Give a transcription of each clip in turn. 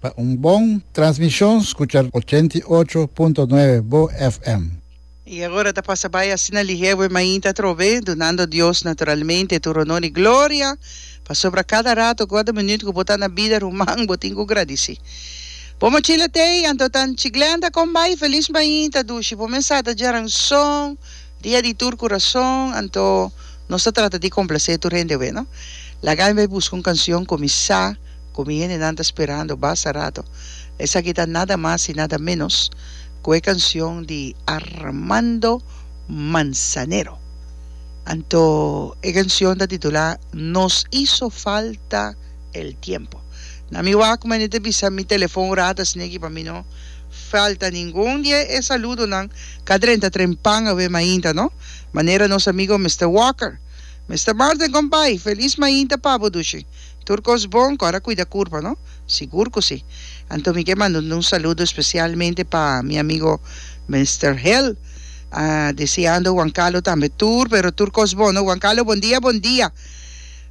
Pa un bon transmishon skucha ochenta i ocho punto nuebe bo FM. I agora ta pasa bai asina lihewe mainta atrobe, dunando Dios naturalmente tur honor i gloria, pasobra kada rato ku ada minüt ku bo ta na bida ruman bo tin ku gradisí. Bo mochila tei, anto tanchi Glenda kon bai, felis mainta dushi, bo mesa ta djaran son, Dia di tur kurason, anto nos ta trata di komplase tur hende awe, no? Laga mi bai buska un kansion ku mi sa ku mi hendenan ta sperando basta rato. Esaki ta nada mas i nada ménos ku e kansion di Armando Manzanero. Anto e kansion ta titulá Nos hizo falta el tiempo. Na mi wak mane ta bisa mi telefon rata sneki pa mi no falta ningun di e saludonan Ka dren ta dren pan awe mainta no. Manera nos amigo Mister Walker. Mister Martin con bay. Feliz mainta pa bo dushi. Tur cos bon cora cuida curpa no. Sigur cu si. Anto mi ke manda un saludo especialmente pa mi amigo Mister Hel. Deseando Juan Carlo tambe tur pero tur cos bon no. Juan Carlo bon dia bon dia.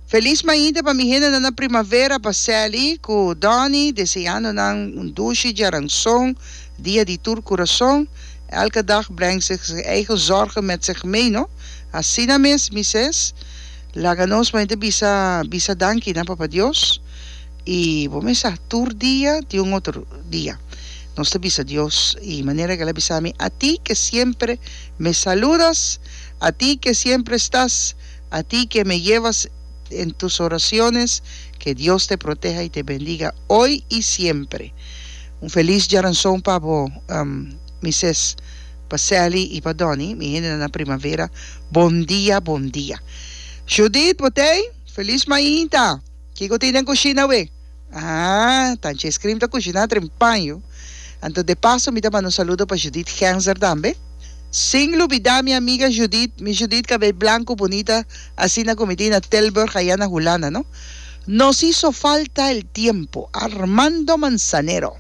Feliz mañita pa mi hendenan na primavera pa Sally cu Donny deseando nan un dushi djaranzon dia di tur curason elke dag breng zich zich eigen zorgen met zich mee no asina mes mises laga nos mañita bisa bisa danki na papa Dios y bo mes sa tur dia tin un otro dia nos ta bisa Dios y manera que el a bisa mi ati que siempre me saludas ati que siempre stas A ti ke me yeva en tus oraciones, ke Dios te proteha y te bendiga hoy y siempre. Un feliz Dia nan son pa bo mi ses, pa Sally y pa Donny, mi hende nan na Primavera, bon dia bon dia. Judith, botey, feliz mainta. Kico tin den cushina wee? Ah, ta anchi e scream ta cushiná dren paño. Anto de paso mi ta manda un saludo pa Judith Genzer tambe. Sin lubidá mi amiga Judith, mi Judith cabei blanco bunita asina cu mi tin na Tilburg ayá na Hulanda, no? Nos hizo falta el tiempo, Armando Manzanero.